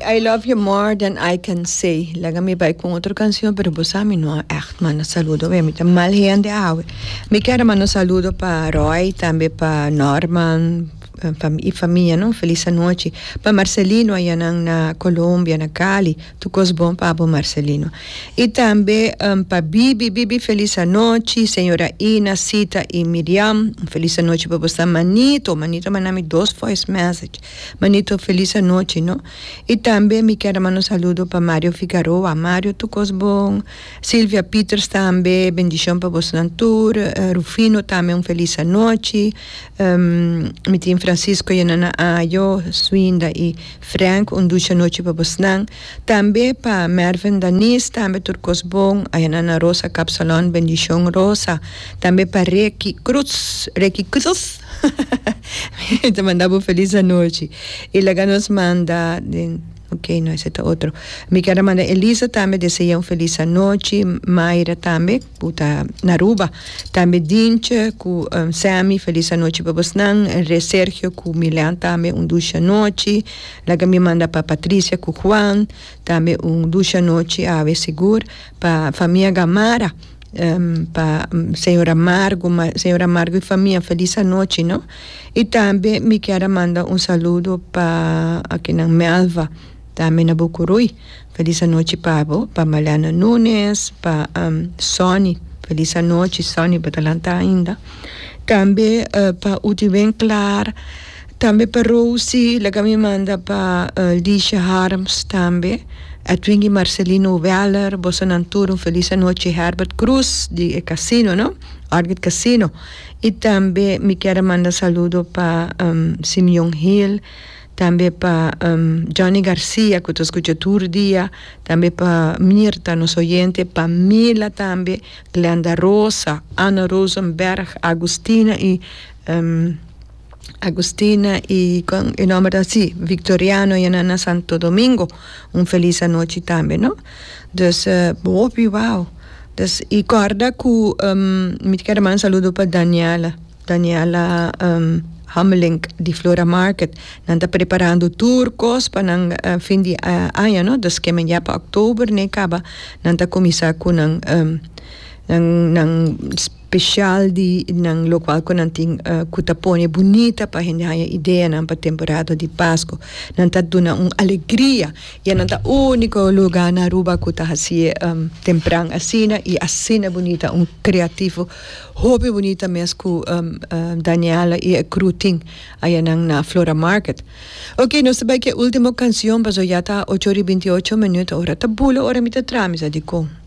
I love you more than I can say laga mi bai con otro cancion pero bo sa mi no echt manda saludo awe mi ta mal hende awe mi quiero manda un saludo pa Roy tambe pa Norman y famia no feliz anochi pa Marcelino ayanan na Colombia na Cali tur cos bon pa bo Marcelino y tambe pa Bibi, Bibi feliz anochi señora Ina, Sita y Miriam feliz anochi pa bosa manito manito a manda mi dos voice message. Manito feliz anochi no. Y tambe mi ker a manda un saludo pa Mario Figaroa, Mario tur cos bon, Silvia Pieters tambe bendicion pa bosnan tur, Rufino tambe un feliz anochi, mi tin Francisco y Nana Ayo, Swinda y Frank un dushi anochi pa bosnan, tambe pa Merven Danis tambe tur cos bon, aya Nana Rosa Capsalon bendicion Rosa, tambe pa Reky Cruz, Reky Cruz. Mi ta manda bo felis anochi. Y laga nos manda den, ok no ese ta otro. Mi ker a manda Elisa tambe desea un felis anochi, Mayra tambe cu ta na Aruba, tambe Dinche cu Sammy felis anochi pa bosnan, Re Sergio cu Milean tambe un dushi anochi, laga mi manda pa Patricia cu Juan tambe un dushi anochi awe sigur, pa famia Gamarra pa señor Amargo señor Amargo y famia felis anochi no y tambe mi kier a manda un saludo pa akinan Melva tambe na Bucuruy felis anochi pa bo pa Maleana Nunes pa Sonny felis anochi Sonny bo ta lanta ainda tambe pa Utiben Clar Tambe pa Rosie laga mi manda pa Liesje Harms tambe, Edwin y Marcelino Weller, boso nan tur un feliz anochi, Herbert Cruz di e casino no, Orchid Casino, y tambe mi kier a manda saludo pa Simeon Hill, tambe pa Johnny Garcia cu ta scucha tur dia, tambe pa Mirta nos oyente, pa Mila tambe, Glenda Rosa, Anna Rosenberg, Agustina y Agustina y e nomber ta si Victoriano y nan na Santo Domingo un feliz anochi tambe no dus bo hopi wao dus y corda cu mi ta kere manda saludo pa Daniela Daniela Hamelink di Flora Market nan ta preparando tur cos pa nan fin di aña no dus kimen ya pa october ne caba nan ta cuminsa cu nan nan nan Speshal di nan lokual ku nan tin ku ta pone bunita pa hende haña ideanan pa temporada di Pasko. Nan ta duna un alegria i e nan ta úniko lugá na Aruba ku ta hasi e tempran asina i asina bunita. Un kreativo hopi bunita mes ku Daniela i e kru tin ayanan na Flora Market. Oke, nos ta bai ku e último kanshon pasobra ya ta ocho ora i binti ocho minüt. Ora ta bula ora mi ta traha mi sa dikon.